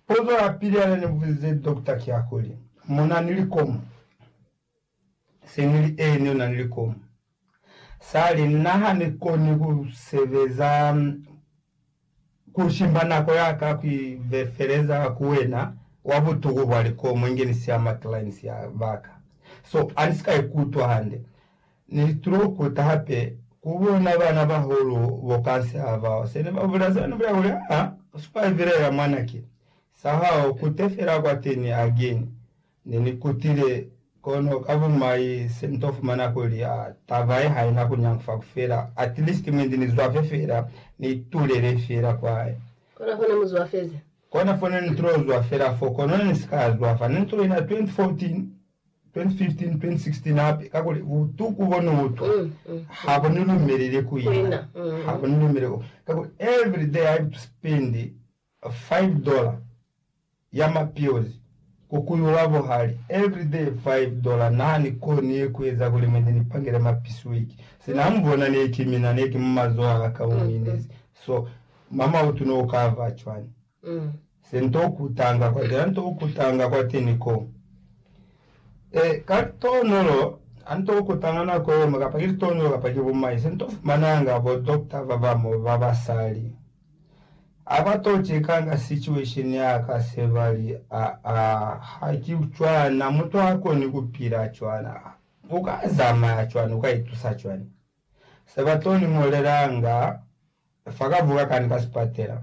Pozo ya pili ya ne ni buzize dokota ki ya kuli, Mo na ni likomu? Se nili, Eeni, u na ni likomu. Sa li, Na ha ni koni ku sebeza, ku shimba nako ya ka ku ivefeleza ku wena wa butuku bwa likomu inge ni siya ma clients ba ka. So, a ni si ka ikutwa hande. Ni stroke ta hape ku bona bana bahulu bo kanse ha ba se ne ba bula zanu bya kuli, Aa, u survivelela mwanake. Sa hao kute fela kwateni again. Ne ni kutile, kono ka bumai se ni to fumana kuli, aa, taba ye haina ku nyangufa ku fela, at least mwe ndi ni zwafe fela, ni itulele fela kwaye. Kona fo ne mu zwafezi. Kona fo ne ni tilo zwafela fo, kono ne ni si ka zwafa. Ne ni tulile na 2014. 2015-2016 hape, kakuli butuku bo ni utwa ha bo ni lumelele ku ina, ha bo ni lumele ku, kakuli every day I have to spend five dollar ya ma pills ku ku yuwa buhali, every day five dollar, na ni koni ku eza kuli mine ni pangele ma piece week, sina mu bona ne ki mina, ne ki mu mazoho a ka mu minezi, so mama u tuno u ka va cwani? Se nto kutanga kwatela nto kutanga kwateni ko. E, ka litonolo, a nto kutanga nako yemo, kapa ki litonolo kapa ki bumai, se nto fumananga bo doctor babamo ba basali. A ba to chekanga situation ya ka, se ba li, A, a, ha ki cwana, mutu ha koni kupila cwana. U ka zamaya cwani, u ka itusa cwani? Se ba to ni molelanga fa ka vuka kani ka sipatela.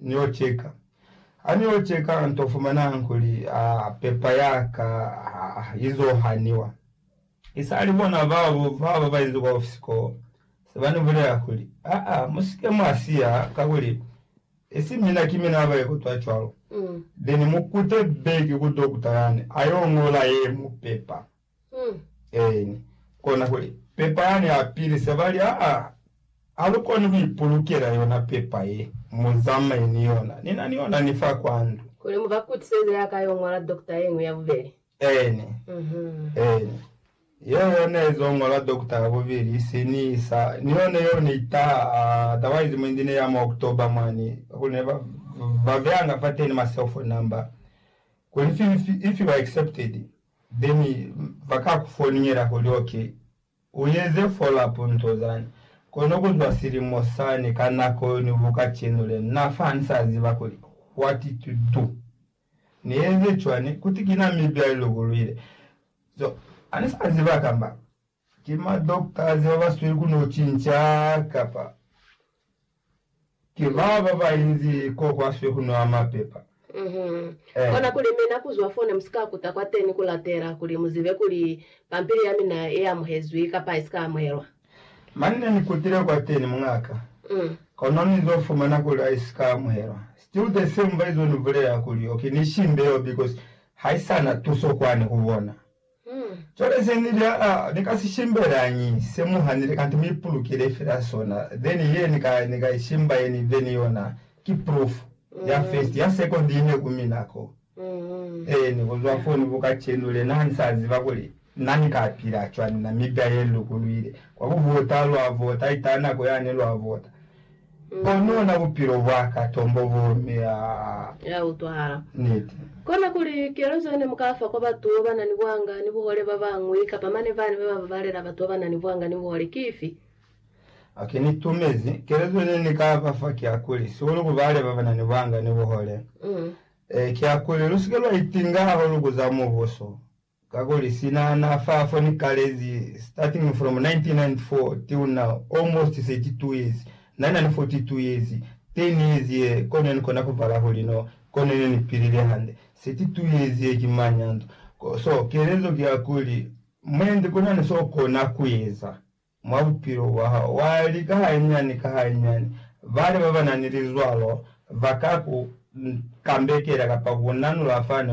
Niyo ceka. Ha niyo ceka, nto fumanang kuli, a, pepa ya ka, a, izo haniwa. I sali bona babo ba ba inzi kwa ofisi koo, se ba ni bulela kuli, A, a, mu si ke mwa siya, kakuli, isi mina ki mina ba ye kutwa cwalo. Then mu kute back ku dokta yani, a yo ngola ye mu pepa. Eeni, kona kuli, pepa yani a pilisa, ba li, Aa, ha lu koni ku ipulukela yona pepa ye, mu zamaye ni yona. Ni na ni yona ni fa kwa ndu. Kuli mu ba kutiseze ya ka yo ñola dokta ye ñwi ya bubeli. Eeni. Eeni. Yeo yo ne zo ñola dokta ya bubeli, i si ni isa. Ni yone yeo ne i taha, otherwise mwa indine ya mwa October mwani, kakuli ne ba, ba beanga fateni ma cellphone number, kuli ifi, ifi, ifi ba accepted. Beni ba ka ku foningela kuli, OK, u eze follow-up nto zani. Kono ku zwa silimo sani ka nako yo ni ku kacenu len na fa ni sa ziba kuli what to do. Ni eze cwani? Kuti ki na mibya i lukuluile. So, ha ni sa ziba kamba. Ki ma doctors ba ba sweli ku no cinca kapa ki ba ba ba inzi ko kwa swe ku nwa mapepa? Uhmm. Kona kuli mi na kuzwa fone mu si ka kuta kwateni ku latela kuli mu zibe kuli pampili ya mina i amuhezwi kapa i si ka amuhelwa? Mani ne ni kutile kwateni, mungaka, kono ni zo fumana kuli ha i si ka amuhelwa. Still the same ba izo ni bulela kuli, Okay, ni shimbe yo because ha i sa na tuso kwani ku bona. Hmm. Cwale ze ni lya a, ni ka si shimbelañi se mu hanile kanti mu ipulukile fela sona, then ye ni ka, ni ka i shimba ye ni then yona ki proof ya first, ya second ine ku mina ko. Then kuzwa foo ni buka cenu, lena ha ni sa ziba kuli na ni ka pila cwani, Namibia ye ni lukulwile, kwa ku vota lwa vota, ita nako yane lwa vota. Kono na bupilo bwa ka tombo bo mea. Ya utwahala. Niti. Kona kuli, kezo ye ne mu ka fa kwa batu ba na ni buhanga ni buhole ba bañwi, kapa mane bane ba ba babalela batu ba ba na ni buhanga ni buhole, ki ifi? Ok, ni tumezi. Kezo ye ne ni ka ba fa ki ya kuli, sihulu ku bale ba ba na ni buhanga ni buhole, ki ya kuli, Lu si ke lwa itinga hahulu ku za Mubuso. Kakuli sina na fa fo ni kalezi, starting from 1994 till now, almost 32 years, na na ni 42 years, 10 years ye, ko ne ni kona ku bala kuli no, ko ne ne ni pilile hande, 32 years ye ki manyanto. Ko, so, kelezo ki ya kuli, mwendi ku na ni so kona ku eza mwa bupilo bwa hao, wa lika hañani ka hañani. Bale ba ba na ni lizwalo ba ka ku kambekela kapa ku nanula fani,